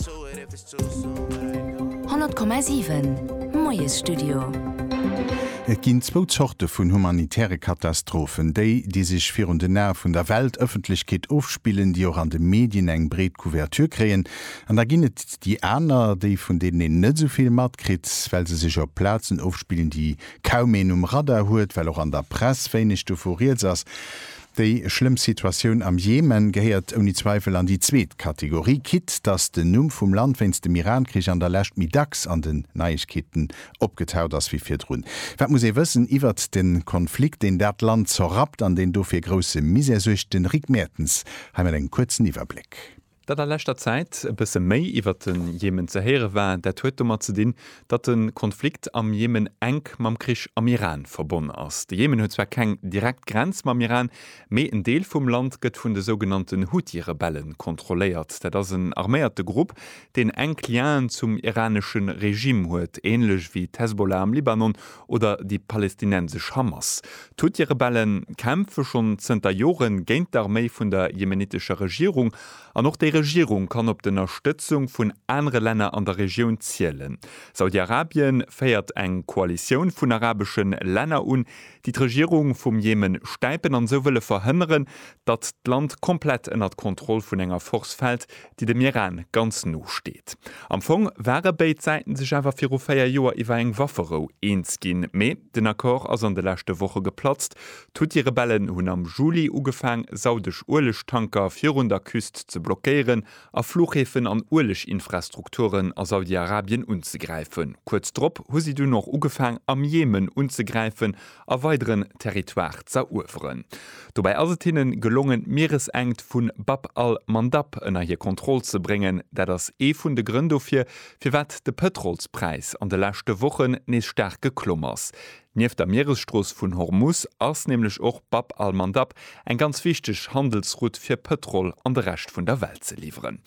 100,7 Moiesstudio. Et ginn zwou Zorte vun humanitäre Katastrophen, déi, déi sech virun den Ae vun der Weltëffentlechkeet ofspillen, déi och an de Medien eng breet Couverture kréien, an da ginn et déi aner, déi, vun deenen een net esou vill matkritt, well se sech op Plazen ofspillen, déi kaum een um Radar huet, well och an der Press wéineg dovu rieds ass. Déi schlëmm Situatioun am Jemen gehéiert ouni Zweifel an déi zweet Kategorie, quitte dass den Numm vum Land wéinst dem Iran-Krich an der Lescht méi dacks an den Neiegkeeten opgetaucht ass wéi virdrun. Wat muss ee wëssen iwwert de Konflikt, deen dat Land zerrappt an deen dofir grousse Misär suergt? De Rick Mertens hei mat engem kuerzen Iwwerbléck. Datt a leschter Zäit e bësse méi iwwert de Jemen ze héiere war, dat huet domat ze dinn, datt de Konflikt am Jemen enk mam Krich am Iran verbonn ass. De Jemen huet zwar keng direkt Grenz mam Iran, mee en Deel vum Land gëtt vun de sougenannten Huthi-Rebelle kontrolléiert. Dat ass en arméierte Grupp, deen enk Lienen zum iranesche Regime huet, änlech wéi d'Hezbollah am Libanon oder déi palestinensesch Hamas. D'Houthi-Rebelle kämpfe schonn zënter Jore géint d'Arméi vun der jemenitescher Regierung, an och déi Regierung kann op d'Ënnerstëtzung vun anere Länner an der Regioun zielen. Saudi-Arabien féiert eng Koalitioun vun arabesche Länner un, déi d'Regierung vum Jemen stäipen an esou wëlle verhënneren, datt d'Land komplett ënnert d'Kontroll vun enger Force fält, déi dem Iran ganz no steet. Am Fong ware béid Säiten sech awer viru véier Joer iwwer eng Wafferou eens ginn, mee den Accord ass an de leschte Woche geplatzt. D'Huthi-Rebellen hunn am Juli ugefaang, saudesch Uelegtanker virun der Küst ze blockéieren a Fluchhäfen an Ueleginfrastrukturen a Saudi-Arabien unzegräifen. Kuerz drop hu si dunn och ugefaang, am Jemen unzegräifen, a weideren Territoire z'erueweren. Dobäi ass et hinnen gelongen d'Mieresenkt vun Bab al-Mandab ënner hir Kontroll ze bréngen. Dat ass ee vun de Grënn dofir, firwat de Pëtrolspräis an de leschte Wochen nees staark geklomm ass. Nieft der Mieresstrooss vun Hormus ass nämlech och Bab al-Mandab eng ganz wichteg Handelsroute fir Pëtrol an de Rescht vun der Welt ze liwweren.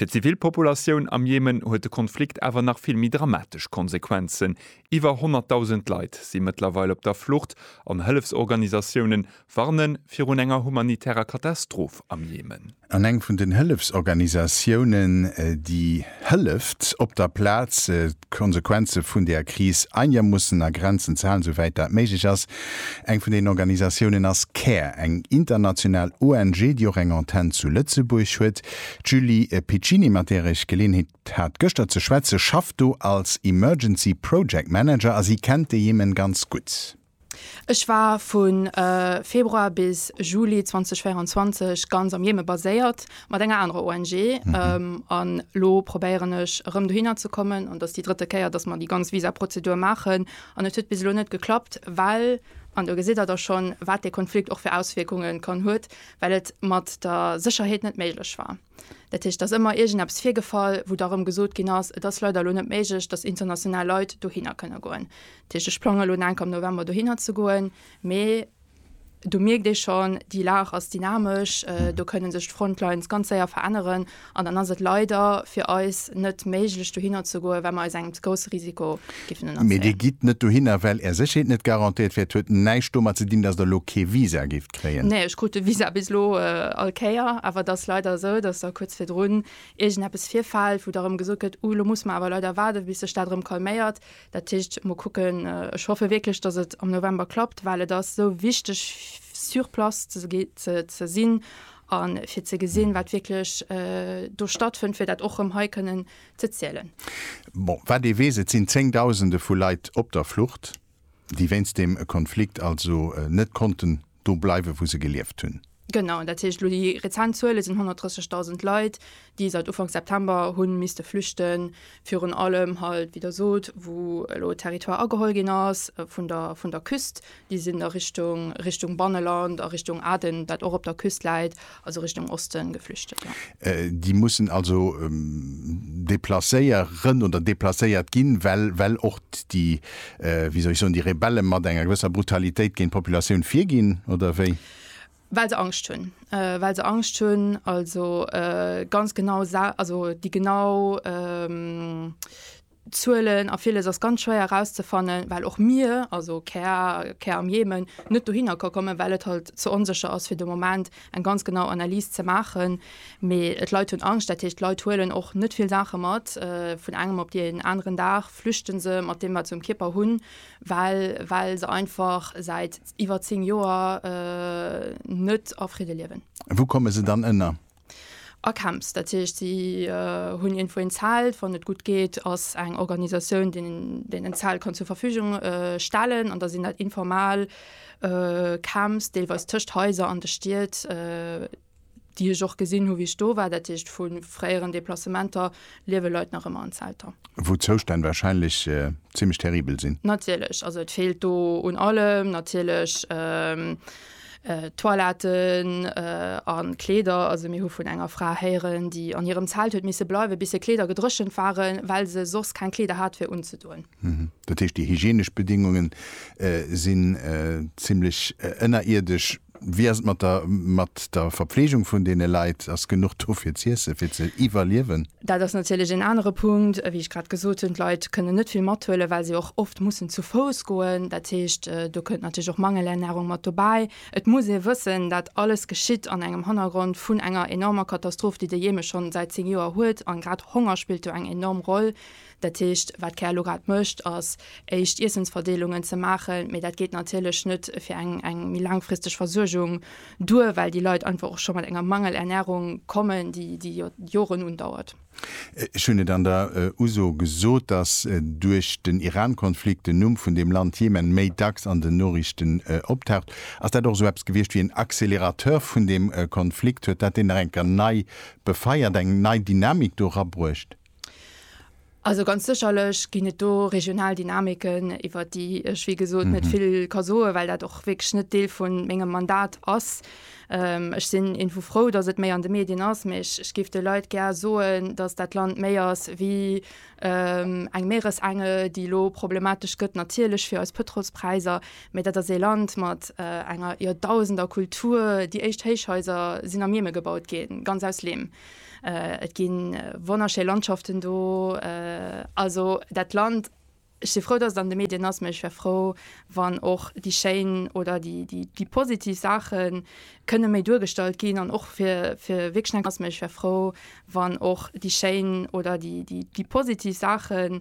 Fir d'Zivilpopulatioun am Jemen huet de Konflikt awer nach vill méi dramatesch Konsequenzen, Iwwer 100.000 Leit si mëttlerweil op der Flucht an Hëllefsorganisatiounen warnen virun enger humanitärer Katastroph am Jemen. An eng vun den Hëllefsorganisatiounen, déi hëlleft op der Plaz, d'Konsequenze vun der Kris einigermussen a Grenzen ze halen, souwäit dat méiglech ass. Eng vun den Organisatiounen ass care, eng international ONG, déi och eng Antenn zu Lëtzebuerg huet. D'Julie Piccini, mat där ech Geleeënheet D' hat gëschter ze schwätze, schafft do als Emergency Project Manager a si kennt de Jemen ganz gutt. Ech war vu Februar bis Juli 2024 ganz am Jemen baséiert mat enger anerer ONG an elo probéieren ech erëm dohinner ze kommen an et ass déi drëtte Kéier, dass mer déi ganz Visaprozedur maachen an et huet bis elo net geklappt, well, an do gesitt Der da schonn, wat dee Konflikt och fir Auswierkungen kann huet, well et mat der Sécherheet net méiglech war. Dat heescht, et ass ëmmer iergendeppes virgefall, wou da erëm gesot ginn ass, et ass leider elo net méiglech, dass international Leit dohinner kënne goen. Dat heescht, ech plangen elo enk am November dohinner ze goen, mee do mierkt ee schonn, déi Lag ass dynamesch, do kënne sech d'Frontlines ganz séier veränneren an dann ass et leider fir eis net méiglech, dohinner ze goen, well mer eis engem ze grousse Risiko géifen ënnerzéien. Mee Dir gitt net dohinner, well Är Sécherheet net garantéiert wär. Et huet näischt domat ze dinn, dass Der elo kee Visa giff. kréien? Nee, ech krut de Visa bis elo all Kéier, awer et ass leider esou, datt da kuerz virdrun iergendeppes virfält, wou da erëm gesot gëtt, uh, lo musse mer awer leider waarden, bis sech dat erëm calméiert. Dat heescht, mol kucken. Ech hoffe wierklech, datt et am November klappt, well et ass esou wichteg, sur place ze sinn a fir ze gesinn, wat wierklech do stattfënnt, fir dat och erëm hei kënnen ze zielen. Bon, wat ee weess, et sinn Zéngdausende vu Leit op der Flucht. Déi wéinst deem Konflikt also net konnten do bleiwen, wou se gelieft hunn. Genau, dat heescht elo déi rezent Zuele sinn 130.000 Leit, déi säit Ufank September hu misste flüchten. Virun allem halt, wéi Der sot, wou elo Territoire ageholl ginn ass vun der vun der Küst. Déi sinn da Richtung Richtung Banneland a Richtung Aden, dat och op der Küst läit. Also Richtung Osten geflüchtet, jo. Déi mussen also deplacéier ren oder deplacéiert ginn, well, well och déi, wéi soll ech soen, déi Rebellen mat enger gewësser Brutalitéit géint d'Populatioun virginn, oder wéi? Well se Angscht hunn. Well se Angscht hunn, also ganz genau sa, also déi genau, Zuelen a villes ass ganz schwéier erauszefannen, well och mir, also car, car am Jemen, net dohinner ka kommen, well et halt ze onsécher ass fir de Moment eng ganz genau Analys ze maachen. Mee d'Leit hunn Angscht, dat heescht d'Leit huelen och net vill Saache mat. Vun engem op deen aneren Dag flüchte se mat deem, wat se um Kierper hunn, well, well se einfach säit iwwer zéng Joer net a Fridde liewen. Wou komme se dann ënner? A Camps, dat heescht si hunn iergendwou een Zelt, wann et gutt geet ass eng Organisatioun deen deen en Zelt kann zur Verfügung stellen an da sinn dat informal Camps, deelweis tëscht Haiser an de Stied, déi ech och gesinn hu wéi ech do war. Dat heescht vu fréieren Deplacementer liewe Leit nach ëmmer an Zelter. Wou d'Zoustänn warscheinlech zimlech terribel sinn. Natierlech, also et feelt do un allem natierlech. Toiletten a Kleeder. Also mir hu vun enger Fra héieren, déi an hirem Zelt huet misse bleiwen, bis hir Kleeder gedréchent waren, well se soss keng Kleeder hat fir unzedoen. Dat heescht, déi hygienesch Bedingunge sinn zimmlech ënnerierdesch. Wéi ass et mat der Verpflegung vun deene Leit? Ass genuch do fir z'iessen, fir ze iwwerliewen? Dat ass natierlech een anere Punkt, wéi ech grad gesot hunn, d'Leit kënnen net vill mathuelen, well se och oft mussen zu Fouss goen. Dat heescht, do kënnt natierlech och Mangelernärung mat dobäi. Et muss ee wëssen, dat alles geschitt an engem Hannergrond vun enger enormer Katastroph, déi de Jemen schonn säit zéng Joer huet, a grad Honger spillt do eng enorm Roll. Dat heescht, wat d'CARE elo grad mécht, ass éischt Iessensverdeelungen ze maachen, mee dat geet natierlech net fir eng méi laangfristeg Versuergung duer, well déi Leit einfach och scho mat enger Mangelernärung kommen, déi jo Joren undauert. Ech hunn et an der Uso gesot, dass duerch den Iran-Konflikt den Numm vun deem Land Jemen méi dacks an den Noriichten optaucht. Ass dat och esou eppes gewiescht wéi en Accélérateur vun deem Konflikt? Huet dat deen nach eng Kéier nei befeiert, eng nei Dynamik do erabruecht? Also ganz sécherlech ginn et do regional Dynamiken, iwwert déi ech wéi gesot net vill ka soen, well dat och wierklech net Deel vu mengem Mandat ass. Ech sinn irgendwou frou, datt et méi an de Medien ass, mä ech géif de Leit gär soen, datt dat Land méi ass wéi eng Meeresenge, déi elo problematesch gëtt, natierlech fir eis Pëtrolspräisser, mä dat ass ee Land mat enger Joerdausender-Kultur. Déi éischt Héichhaiser sinn am Jemen gebaut ginn, ganz aus Leem. Et ginn wonnerschéi Landschaften do. Also dat Land, ech si frou, datt et an de Medien ass, mä ech wär frou, wann och déi schéin oder déi positiv Saache kënne méi duergestallt ginn an och fir wierklech eng. Ass, mä ech wär frou, wann och déi schéin oder déi positiv Saache.